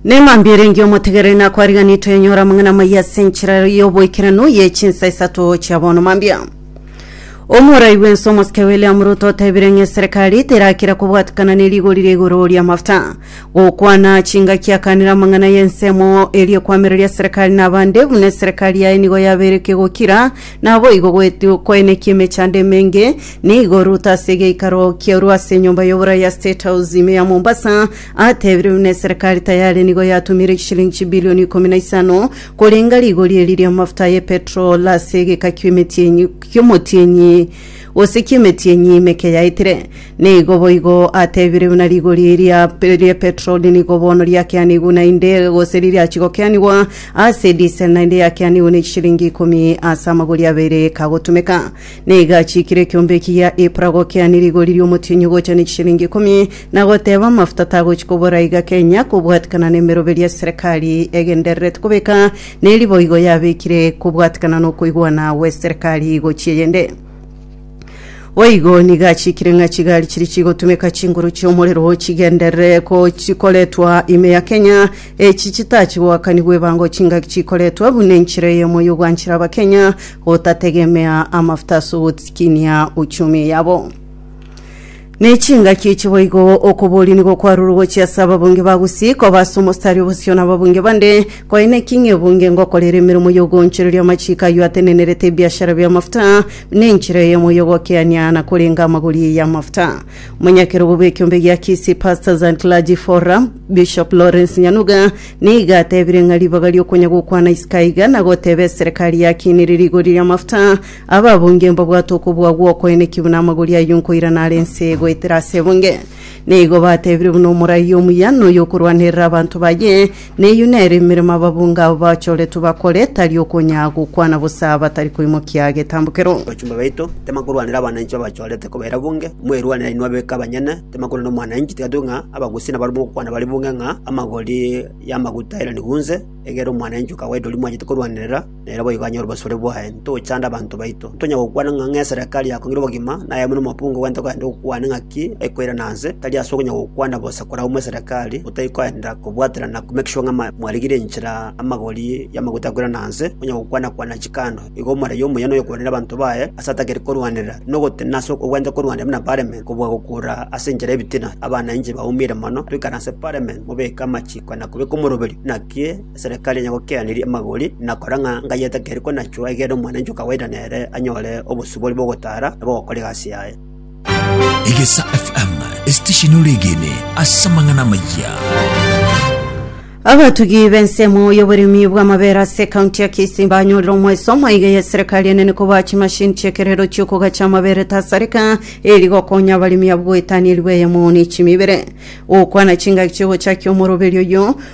Nemambia erenge omotegereri nakwariganiri twenyora amang'ana amaya ase enchera y'oboikeranu ye chinsa isato chia bono mambia omorai bwense omosike William Ruto otebire ng'a eserekari terakira kobwatikana ne rigori ria igoro ri'amafuta gokwana chingaki akanire amang'ana y'ensemo eria ekwamereria serekari na abande buna eserekari yaye nigo yabeire ekegokira Naboigo gwetu koenekia emechando emenge nigo Ruto ase egeikaro kiarua ase enyomba y'oborai ya State House ime ya Mombasa atebirie buna eserekari tayari nigo yatumire chishilingi chibilioni ikomi na isano korenga rigori eri ri'amafuta aye petrol ase egeka ki'omotienyi gose ki'emetienyi meke yaetire Nigo boigo atebire buna rigori ria petroli nigo bono riakeanigwe naende, gose ririachie gokeanigwa ase diesel naende yakeanigwe ne chishiringi ikomi ase amagori abere kagotumeka. Nigo achiikire ekeombe ekiya Ipra gokeania rigori ri'omotienyi ogocha ne chishiringi ikomi, na goteba amafuta tagochi kobora iga Kenya kobwatikana nemeroberi ya serikali egendererete kobeka neri boigo yabekire kobwatikana nokoigwana gwe serikali gochia eyende. Boigo nigo achikire ng'a chigari chiria chigotumeka chinguru chi'omorero chigenderere ko chikoretwa ime ya Kenya. Echi chitachi goakanigwa ebango chingaki chikoretwa buna enchera eyemo y'ogwanchera Abakenya gotategemea amafuta ase ogotikinia uchumi yabo. Ne chingaki echi boigo okoboria nigo kwarurwe gochia ase ababunge ba Gusii koba ase omostari obosio nababunge bande. Koine ki ng'a ebunge ngokorera emeremo y'ogoonchoreria amachiiko ayio atenenerete ebiashara bi'amafuta, na enchera eye moyo ogokeania na korenga amagori y'amafuta? Omonyakerogo bw'ekiombe gia Kisii Pastors and Clergy Forum, Bishop Lawrence Nyanuga, nigo atebire ng'a ribaga ri'okonya gokwana isiko aiga na goteba eserekari yakinire rigori ri'amafuta Ababunge mbabwate okobua gw'okoenekigwa buna amagori ayio nkoirana are ense goetera ase ebunge. Na igo batebire buna omorai omuya na oyokorwanerera abanto baye, neyio nere emeremo ababunge abo bachoretwe bakore, tari okonya gokwana bosa batari koimokia getambokero. Abachumba baito tibakorwanera abananchi babachorete koba erabunge, mwerwanere inwe abeke abanyene, tibakorwa nomwananchi, tiga tube ng'a abagusi nabaria mogokwana bare bunge ng'a amagori y'amaguta airanikwe onse, egere omwananchi okawaida oria mwachete korwanerera, Nere boigo anyore obosore bwaye, ntochande abanto baito. Ntonyare gokwana ng'a ng'esereka ria kong'ira obogima, nayemo nomokungu gwento gande gokwane ng'aki ekoirana nse, tari ase okonya gokwana bosa koragwa mwesereka aria, gotari koenda kobwaterana ku make sure ng'a mwarigire enchera amagori y'amaguta akoirana nse, onya gokwana kwana chikando. Igo omoraia omuya noyokorwanera abanto baye ase atagete korwanera, nogotenena ase ogwenta korwanera buna bareme kobua gokura ase enchera y'ebitina. Abana inche baumire mono, toikare ase parliament mobeke amachiko na kobeka omoroberio, naki Eserekari yanyagokeaneria amagori, na kora ng'a ngai etakeri konachwa, egeera omwananchi o kawaida nere anyore obosibori bw'ogotaara na bw'ogokora egasi yaye. Egesa FM, esitesheni oregene ase amang'ana amaya. Abatugi b'ensemo y'oboremi bw'amabere ase ekaunti ya Kisii banyorire omwesomo iga y'eserikari enene koboa chimasini chi'ekerero chi'okogacha amabere tasareka eri gokonya abaremi abwo goetania erigweyemo ne chimibere. Gokwana chingaki chi'ogochakia omoroberio oyio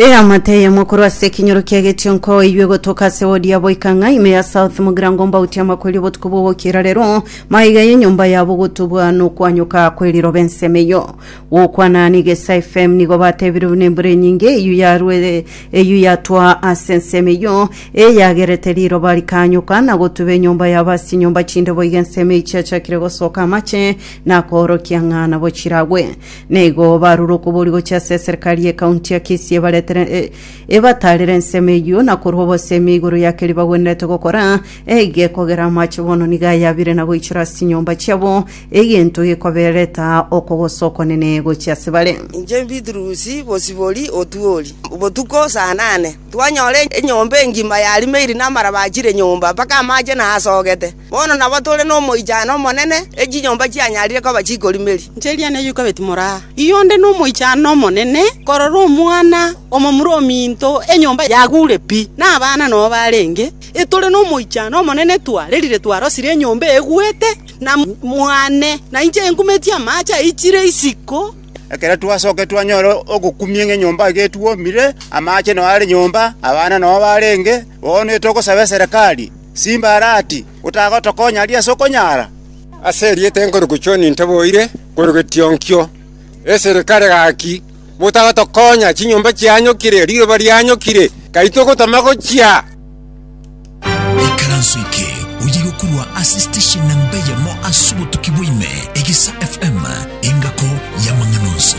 Eamate eyemo korwa ase ekinyoro kia getionko oiywe gotoka ase wodi ya boika ng'a ime ya South Mugirango mbauti amakweri obotuko bw'ogokiera rero maiga y'enyomba yabo gotubwa nokwanyoka kw'eriroba ensemo eyio gokwana nigesa FM nigo batebire buna embura enyinge eyio yarwe eyio yatwa ase ensemo eyio eyagerete riroba rikanyoka na gotuba enyomba yabo ase chinyomba chinde boiga ensemo eyi chiachakire gosoka amache na koorokia ng'a nabo chiragwe Na igo barure okobori gochia ase eserikari y'ekaunti ya Kisii ebaretere e- ebataarere ensemo eyio na korwa obosemi igoro ya keria bagwenerete gokora, eige ekogera amache bono nigo ayabire na goichora ase chinyomba chiabo, egento gekobereta okogosa okonene gochia ase bare. Inche Bitrus Bosibori Otuori, botuko saa nane twanyora enyomba engima yarimeiri namaraba achire nyomba mpaka amache naasogete. Bono nabo tore nomoichano omonene, e chinyomba chianyarire koba chikorimeri. Inche Eliya neyio kabeti more aa. Inwe onde nomoichano omonene korora omwana omomura ominto enyomba yagure pi, na abana nobo barenge, e tore nomoichano omonene twarerire twarosire enyomba egwete, na mwane, na inche enkumetie amaache aichire isiko. Ekero twasokia twanyora ogokumia ng'a enyomba iga etwomire, amaache nao are nyomba, abana nao barenge, bono etogosaba eserekari. Simba are ati, Otagotokonya aria ase okonyara? Ase erieta ekorokwa John ntaboire korokwa etionkio, eserikare gaki, motagotokonya, chinyomba chianyokire, riroba rianyokire, kai togotama gochia. Ekaranso eke oyeirwe korwa ase station namba eyemo ase obotuki bwa ime, Egesa FM, engako y'amang'ana onsi.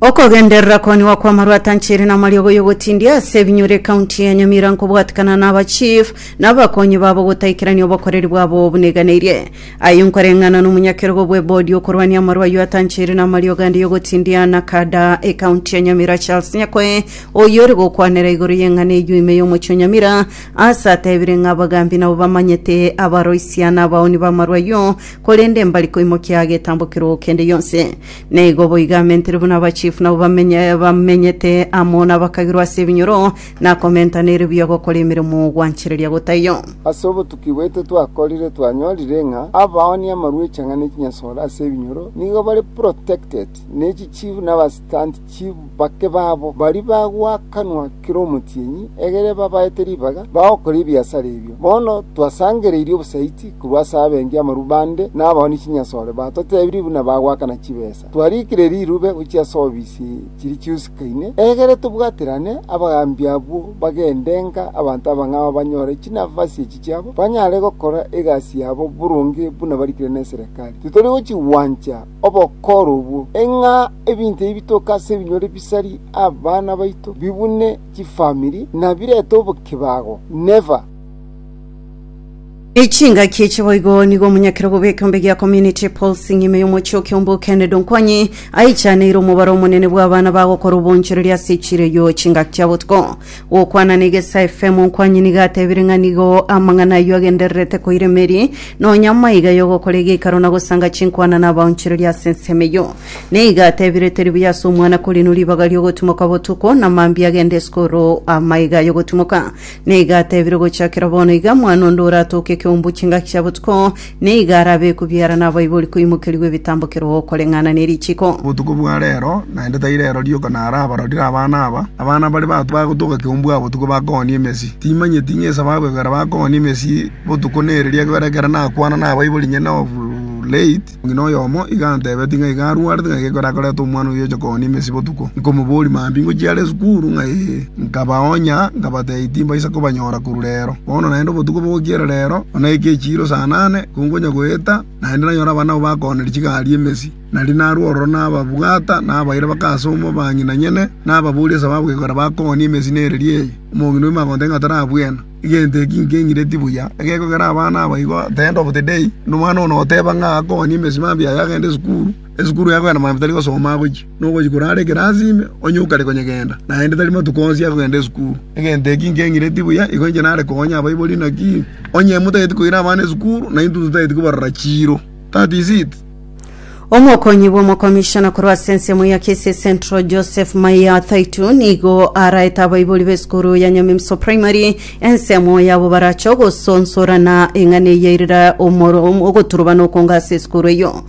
Okogenderera koniwa kw'amarwa atanchire namariogo y'ogotindia ase ebinyure ekaunti ya Nyamira nkobwatikana na aba chief na abakonyi babo gotaikerania obokoreri bwabo obuneganeirie. Ayio nkoreng'ana nomonyakerogo bw'ebodi okorwania amarwa ayio atanchire namariogo ande y'ogotindia na kada ekaunti ya Nyamira Charles Nyakoe oyore gokwanera igoro y'eng'ana eyio ime y'omochie o Nyamira ase atebire ng'a abagambi nabo bamanyete abaroisia na abaoni b'amarwa ayio korende mbari koimokia getambokero kende yonsi Na igo boigo amentire buna abachifu nabo bamenye, bamenyete amo nabakagirwa ase ebinyoro, na komentana ere buya gokora emeremo gwanchereria gotaiyo. Ase obotuki bwaito twakorire twanyorire ng'a abaoni amarwa echanga ne chinyasore ase ebinyoro nigo bare protected ne chichifu na abastant Chibake babo baria bagwa akanwa kera omotienyi, egere babaete ribaga bagokora ebiasara ebio. Bono twasangereirie obosaiti korwa ase abengi amarubande na abaoni chinyasore batotebirie buna bagoakana chibesa. Twariikire rirube gochia ase ofisi chiria chiusikaine, egere tobwaterane abagaambi abwo bagende ng'a abanto abang'ao banyore chinafasi echi chiabo, banyare gokora egasi yabo boronge buna barikire neserekari. Titori gochigwancha. obokoorobwo, ng'a ebinto ebi bitoke ase ebinyore bisarie abana baito, bibune chifamiri, na birete obokebago. Neva. Chingaki echi boigo nigo omonyakera obo bw'ekeombe gia Community Pulse ng'ima y'omochie o Kiombo Kennedy Onkwanyi aichaneire omobaro omonene bw'abana bagokora obonchoreria ase echireyo chingaki chia botuko. Gokwana negesa efemo Nkwanyi nigo atebire ng'a nigo amang'ana ayio agendererete koira emeri, nonya maiga y'ogokora egeikaro na gosanga chinkwana na abaonchoreria ase ensemo eyio. Nigo atebire teri buya ase omwana korinu ribaga ri'ogotimoka botuko, na mambia agende isiko oro amaiga ay'ogotimoka. Nigo atebire ogochakera bono iga mwana onde oratoke ekeumbu chingaki chia botuko, Nigo arabe kobiara nabaibori koimokerigwa ebitambo ker'o okoreng'ana ne richiko. Botuko bwa reero, naende tai reero rioka naro abarorire abana aba, abana baria bato bagotoka keumbu aa botuko bakoonia emesi. Timanyeti ng'esa bagoegwera bakoonia emesi botuko nereria, ekiagera ekero nakwana nabaibori inye na Off-Late, omong'ina oyomo iga antebetie ng'a iga arwarete ng'a geko erakorete omwana oyio oche koonia emesi botuko. Nkomoboria, Mambia ngochia are esukuru? Ng'ai? Nkabaoonya, nkabateebia timbaisa kobanyora korwa reero. Bono naende obotuko bogokiera reero, buna eke echiiro saa nane, konkonya goeta, naende nanyore abana abwo bakoonire chigari emesi. Nario narue ororo nababwata, nabaira bake ase omobang'inanyene, nababoria esababu gekogera bakoonie emesi nereria eye. Omong'ina oima agontebia ng'a tarabwena. Egento eki nkeng'ireti buya, egekogera abana aba igo, tende obotedei, na omwana one oteeba ng'a akoonie emesi mambia aye agende esukuru. Esukuru yabo ere mambia tari gosoma agochia, na ogochia korara ekerasi ime, onye okare konya genda, naende tari matuko onsi akogenda esukuru. Egento eki nkeng'ireti buya, igo inche nare konya abaibori. Naki onye motageti koira abana esukuru, naintwe totageti kobarora chiiro. That is it. Omokonyi bw'omokomishona korwa ase ensemo ya Kisii Central, Joseph Maiya Thaitu, nigo araete abaibori b'esukuru ya Nyamimiso Primary ensemo yabo barache ogosonsorana eng'ana eye erira omoro- ogoturubana okonga ase esukuru eyio.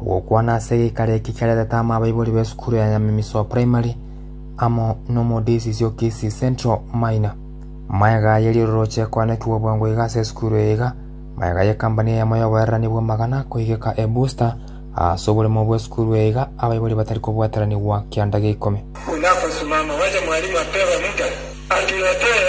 Ogokwana ase egeikaro eke kiarentete amo abaibori b'esukuru ya Nyamimisoa Primary amo n'omodisiisi o Kisii Central Maina. Magega aye riroroche ekoanekigwa bwango iga ase esukuru eye iga magega y'ekambani eyemo y'oboererani bw'amagana koigeka e Booster aase oboremo bw'esukuru eye iga abaibori batari kobwataranigwa kianda geikomi. Buna akosimama, gwacha mwalimu ateeba Mika, Aturetee!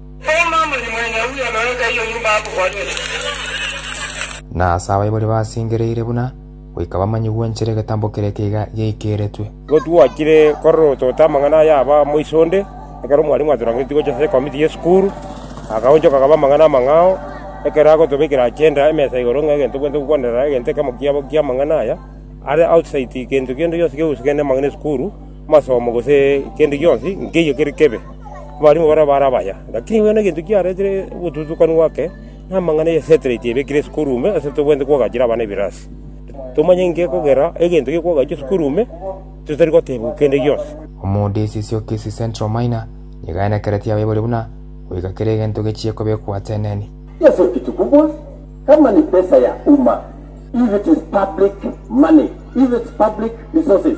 Na ase abaibori basingereire buna goika bamanye gwenchera egetambo kere ekeiga giaikeretwe. Igo twachire kororotota amang'ana aya aba moiso onde, ekero omwalimu atorangeretie gocha ase ekomiti y'esukuru, akaonchoka akaba amang'ana amang'ao, ekero agotobekera agenda emesa igoro ng'a egento tobwenerete gokwanera egento ekemo kiabo ki'amang'ana aya, are outside gento kende gionsi kegusika kende amang'ana esukuru. Amasomo gose kende gionsi nkeyio kere kebe, abarimu barabwo bare abaya. Lakini bono egento kiaretire obotutukanu gwake, na amang'ana ya setilaiti ebekire esukuru ime ase tobwenerete koagachera abana ebirasi. Tomanye inki ekogera egento gekoagachwa esukuru ime, totari gotebwa kende gionsi. Omood esisi o Kisii Central Minor nigaenekeretie abaibori buna goika kera egento gechie kobekwa ateneni. Yes or kitu kubwa kama ni pesa ya umma if it is public money if it's public resources.